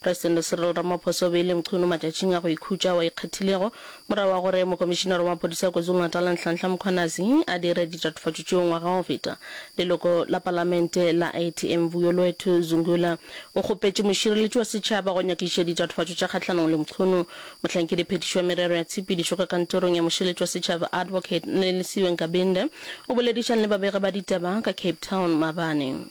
Presidente Cyril Ramaphosa o beile nkgono matšatšing a go ikhutša ao a ikgethilego morago ga gore Mokomišinara wa Maphodisa KwaZulu-Natal Nhlanhla Mkhwanazi a dire ditatofatšo tšeo ngwaga o feta. Leloko la Palamente la ATM Vuyolwethu Zungula o kgopetše mošireletši wa setšhaba go nyakišiša ditatofatšo tša kgahlanong le nkgono. Mohlankedi phetiši wa merero ya tshepedišo ka kantorong ya mošireletši wa setšhaba Advocate Nelisiwe Nkabinde o boledišang le babegi ba ditaba ka Cape Town maabane.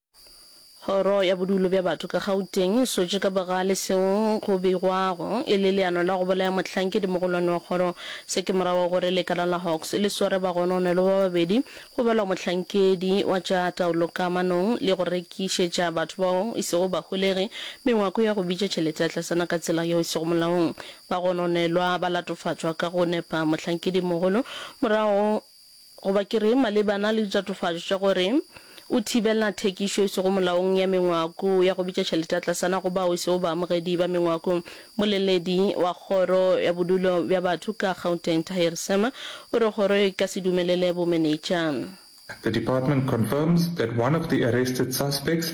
Kgoro ya Bodulo bja Batho ka Gauteng e swetše ka bogale seo go beigwago e le leano la go bolaya mohlankedi-mogolwane wa kgoro se ke morago ga gore lekala la Hawks le sware bagononelo ba babedi go balwa mohlankedi wa tša taolo kamanong le go rekišetša batho bao e sego baholegi mengwako ya go bitša tšhelete ya tlasana ka tsela yeo e sego molaong. Bagononelwa ba latofatšwa ka go nepa mohlankedi-mogolo morago Goba ke re, malebana le ditatofatšo tša gore o thibela thekišo e sego molaong ya mengwako ya go bitša tšhelete ya tlasana go bao e sego baamogedi ba mengwako. Mmoleledi wa Kgoro ya Bodulo bja Batho ka Gauteng, Tahir Sema, o re kgoro e ka se dumelele bomenetša. The department confirms that one of the arrested suspects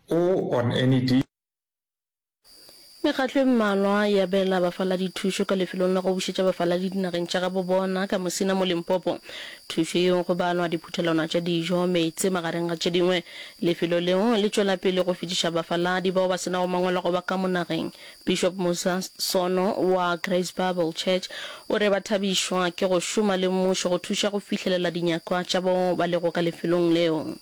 O on any di. Mekgatlo e mmalwa e abela bafaladi thušo ka lefelong la go bušetša bafaladi dinageng tša gabo bona ka Musina mo Limpopo. Thušo yeo go balwa diphuthelwana tša dijo, meetse magareng ga tše dingwe. Lefelo leo le tšwela pele go fetiša bafaladi bao ba se nago mangwalo a go ba ka mo nageng. Bishop Musa Sono wa Grace Bible Church o re ba thabišwa ke go šoma le mmušo go thuša go fihlelela dinyakwa tša bao ba lego ka lefelong leo.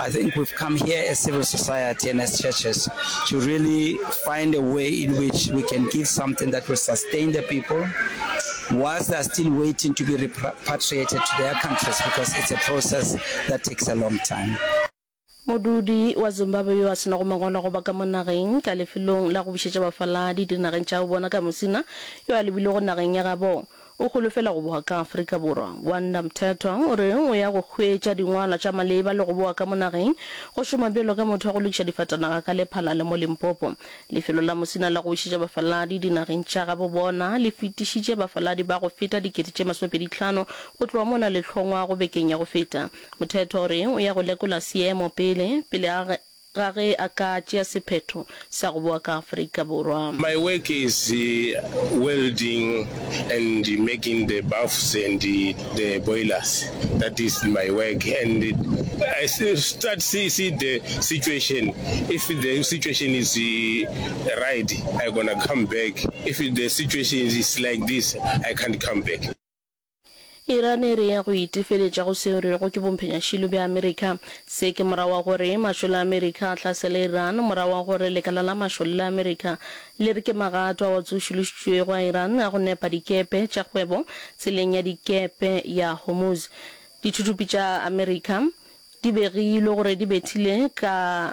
I think we've come here as civil society and as churches to really find a way in which we can give something that will sustain the people whilst they are still waiting to be repatriated to their countries because it's a process that takes a long time. Modudi wa Zimbabwe yo a se nago mangwalo a go ba ka mo nageng ka lefelong la go bušetša bafaladi dinageng tša bona ka mosina yo a lebilwego nageng ya gabo O holofela go boa ka Afrika Borwa. Gwanda Mthethwa o re o ya go hwetša dingwalwa tša maleba le go boa ka mo nageng go šoma bjalo ka motho wa go lokiša difatanaga ka Lephalale mo Limpopo. Lefelo la Musina la go bušetša bafaladi dinageng tša gabo bona le fetišitše bafaladi ba go feta dikete tše masomepedi tlhano go tloga mo na le hlongwago bekeng ya go feta. Mthethwa o re o ya go lekola seemo pele pele a ga ge a ka tšea sephetho sa go boa ka Afrika Borwa. My work is welding and making the baths and the boilers that is my work and I start see see the situation if the situation is right I gonna come back if the situation is like this I can't come back. Iran e rea go itefeletša go seo re rego ke bomphenyašilo bja Amerika. Se ke morago wa gore mašole a Amerika a hlasele Iran, morago wa gore lekala la mašole la Amerika le re ke magato ao a tsošološitšwego a Iran a go nepa dikepe tša kgwebo tseleng ya dikepe ya Hormuz. Dithuthupi tša Amerika di begilwe gore di bethile ka